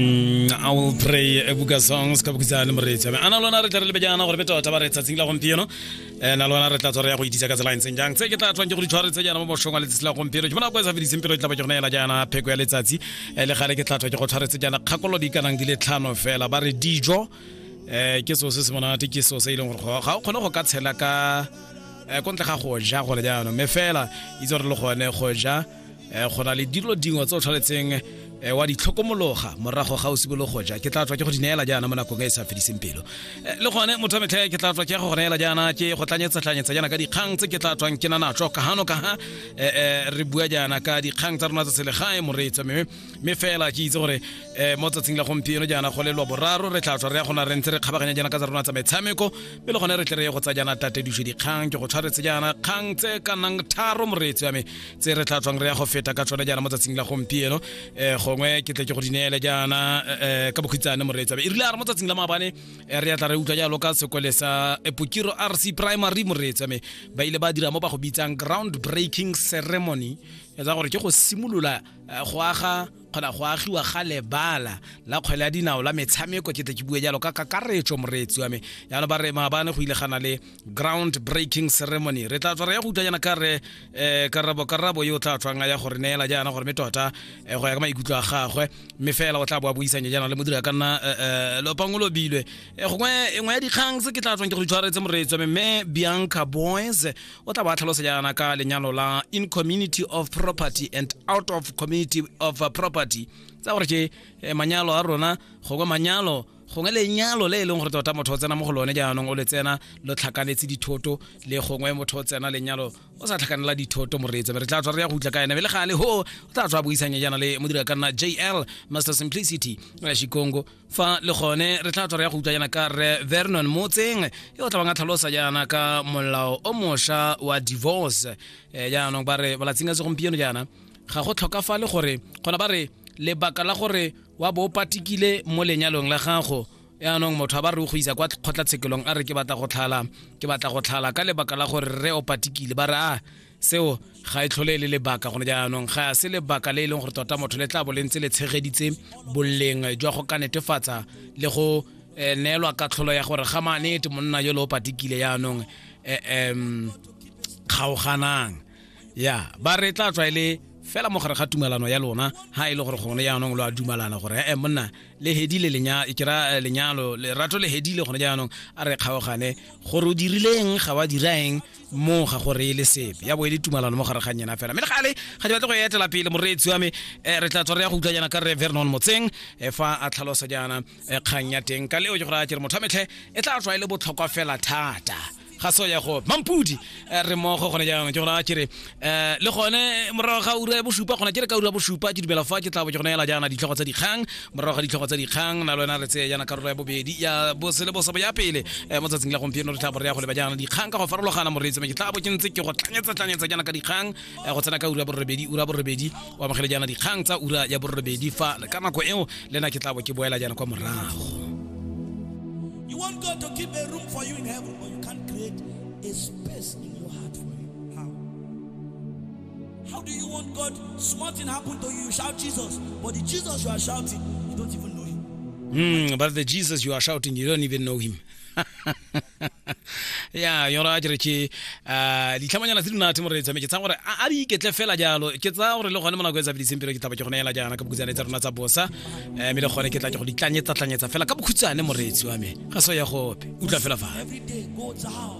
mm, I will pray a buka song se ka bukisa le moreetsi a ana lona re tla re lebe jaana gore be tota ba re tsatsing la gompieno eh, na lona re tla tswa re ya go itisa ka tsela e ntseng jang tse ke tla tswang ke go ditshware tse jaana mo boshong wa letsatsi la gompieno ke bona go e sa fediseng pelo e tla ba ke gona ela jaana pheko ya letsatsi eh, le gale ke tla tswa ke go tshwaretse jaana kgakolo di kanang di le tlhano fela ba re dijo eh ke so se se monate ke so se e leng gore ga o kgone go ka tshela ka eh, ko ntle ga go ja gore jaanong me fela itse gore le gone go ja eh, go na le dilo dingwe tse o tshwanetseng eh, wa ditlhokomologa morago ga o simologo ja ke tla tswa ke go di neela jaana mo nakong e e sa fediseng pelo eh, le gone motho wa metlhe ke tla tswa ke go neela jaana ke go tlanyetsatlanyetsa jaana ka dikgang tse ke tla tswang ke na natso ka gano ka ga re bua jaana ka dikgang tsa rona tsa selegae moreetsa mme mme fela ke itse gore um mo tsatsing la gompieno jaana go lelwa boraro re tla tswa re ya gona re ntse re kgabaganya jaana ka tsa rona tsa metshameko mme le gone re tle re ye go tsa jaana tatediso dikgang ke go tshwaretse jaana kgang tse ka nang tharo moreetsi wa me tse re tla tswang re ya go feta ka tsone jaana mo tsatsing la gompieno um gongwe ke tle ke go di neele jaana um ka bokhutsane moreetsi wa me e rile a re mo tsatsing la maabane re ya tla re utlwa jalo ka sekole sa epokiro r c primary moreetsi wa me ba ile ba dira mo ba go bitsang ground breaking ceremony etsa gore ke go simolola Eh, go aga kgona go agiwa ga lebala la kgwele ya dinao la metshameko ke tle ke bue jalo ka kakaretso moreetsi wa me yana ba re maabane go ile gana le ground breaking ceremony re tla tswa re ya go utlwa jana ka re um karabo karabo yo o tla tswang a ya gore neela jaana gore me tota eh, go ya ka maikutlo a gagwe mme fela o tla bo a buisanya jaana le modira ka nna um lopango lobilwe gongwe engwe ya dikgang se ke tla tswang ke go itshwaretse moreetsi wa me mme bianca boys o tla ba tlhalosa jaana ka lenyalo la in community of property and out of community of property tsa gore ke eh, manyalo a rona gongwe manyalo gongwe lenyalo le e leng gore tota motho o tsena mo go lone jaanong o le tsena lo tlhakanetse dithoto le gongwe motho o tsena lenyalo o sa tlhakanela dithoto moreetsa re tla tswa re ya go utla ka ene be le gale ho o tla tswa buisanya jaana le modira ka nna jl master simplicity shikongo fa le gone re tla tswa re ya go utlwa yana ka re vernon motseng yo o tlabang a tlhalosa yana ka molao o mosha wa divorce um eh, jaanong ba re balatsing a segompieno jaana ga go tlhokafale gore gona ba re lebaka la gore wa bo o patikile mo lenyalong la gago yaanong motho a ba re o go isa kwa kgotlatshekelong a re ke batla go tlhala ke batla go tlhala ka lebaka la gore re o patikile ba re a seo ga e tlhole e le lebaka gone jaanong ga se lebaka le e leng gore tota motho le tla bo le ntse le tshegeditse boleng jwa go ka netefatsa le go eh, neelwa katlholo ya gore ga manete monna yo le o patikile jaanong um kgaoganang ya ba re tla tswa e le fela mo gare ga tumelano ya lona ha e le gore gone jaanong lo a dumalana gore e monna le hedile kera lenyalo lerato le hedile gone jaanong a re kgaogane gore o dirileng ga wa diraeng mo ga go reele sepe ya bo e le tumalano mo gare ga nyena fela mme le gale ga di batle go etela pele moreetsi wa me eh, re tla tswa re ya go utlwa jaana ka re vernon motseng eh, fa a tlhalosa jaana eh, kgang ya teng ka leo ke gore a ke re motho wa metlhe e tla tswa e le botlhokwa fela thata ga so ya go mampudi eh, re mogo gone jaanong ke gore a ke re eh le gone morago ga ura ya bosupa gona ke re ka ura ya bosupa ke dumela fa ke tla bo ke gone ela jaana ditlhogo tsa dikgang morago ga ditlhogo tsa dikgang na lwena re tseye jaana karolo ya bobedi ya bosele bosabo ya pele eh, mo tsatsing la gompieno re tla bo re ya go leba jaana dikgang ka go farologana moreetsi me ke tla bo ke ntse ke go tlanyetsa tlanyetsa jaana ka dikgang eh, go tsena ka ura ya borobedi ura ya borobedi o amogele jaana dikgang tsa ura ya borobedi fa ka nako eo le nna ke tla bo ke boela jaana kwa morago You want God to keep a room for you in heaven, but you can't create a space in your heart for Him. How? How do you want God? Small thing happened to you, you shout Jesus. But the Jesus you are shouting, you don't even know him. Mm, but the Jesus you are shouting, you don't even know him. ya yona a kere ke ah, ditlhamanyana tse di nate mo re tsame ke tsaya gore a a di iketle fela jalo ke tsaya gore le gone mo nako e tsabediseng pelo ke taba ke gone ela jaana ka bokhutshwane tsa rona tsa bosa um le gone ke tla ke go ditlanyetsatlanyetsa fela ka bokhutshwane moreetsi wa me ga so ya gope utlwa fela fale Every day go down.